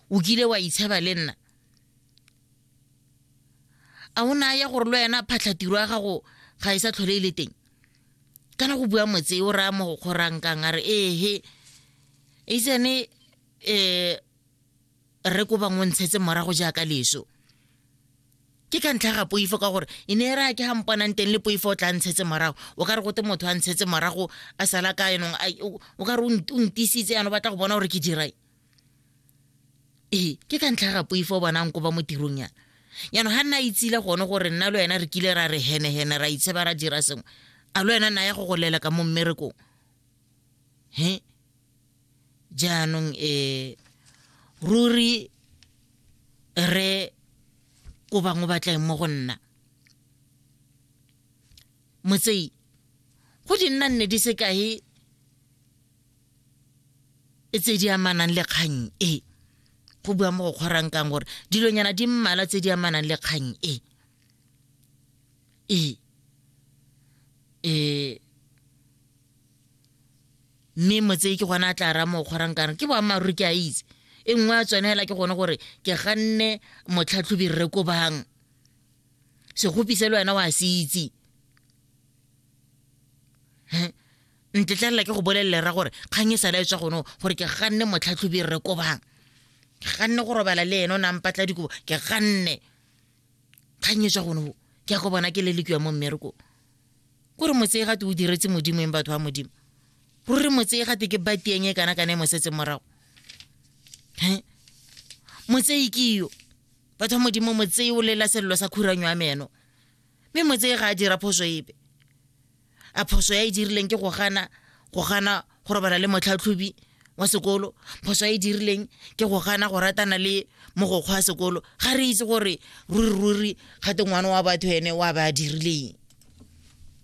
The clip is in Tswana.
o kile wa itsheba le nna a o ne a ya gore le wena phatlhatiro ya gago ga e sa tlhole e le teng kana go bua motse o raya mo go kgorankang a re ehe itsene um re ko bangwe o ntshetse morago jaaka leso ke ka ntlha ga poifo ka gore e ne e raya ke ga mponang teng le poifo o tla ntshetse morago o ka re gote motho a ntshetse morago a sala ka yanong o ka re o ntisitse yana o batla go bona gore ke dirae ee ke ka ntlha ga poifo bonang ko ba mo tirong yana jaanong ga nna itsile gone gore nna le wena re kile ra re henehene ra itsheba ra dira sengwe a le wena naya go go lela ka mo mmerekong he jaanong um ruri re ko bangwe ba tlaeng mo go nna motsei go di nna nne di sekae e tse di amanang le kgang e go bua mo go kgorang kang gore dilonyana di mmala tse di amanang le kgang e e e mme motse ke gona a tla ra mo kgorang kang ke boammaaruri ke a itse e nngwe a tsone fela ke gone gore ke ganne motlhatlhobi rre ko bang segopi se le wena wa se itse ntetlelela ke go bolelele ra gore kgang e sala e tswa gone gore ke ganne motlhatlhobi re kobang ke ganne go robala le ene o nang patla dikobo ke ganne kgang e tswa gone ke ya go bona ke le lekiwa mo mmereko kore motsee gate o diretse modimo eng batho ba modimo ruri motsee gate ke batieng e kana kana e mosetseng morago motsei ke yo batho ba modimo motsei o lela selelo sa khuranyo ya meno mme motsei ga a dira phoso epe a phoso ya e dirileng ke go gana go gana go robala le motlhatlhobi wa sekolo phoso ya e dirileng ke go gana go ratana le mogokgwa wa sekolo ga re itse gore ruri ruri gate ngwana wa batho ene wa ba a dirileng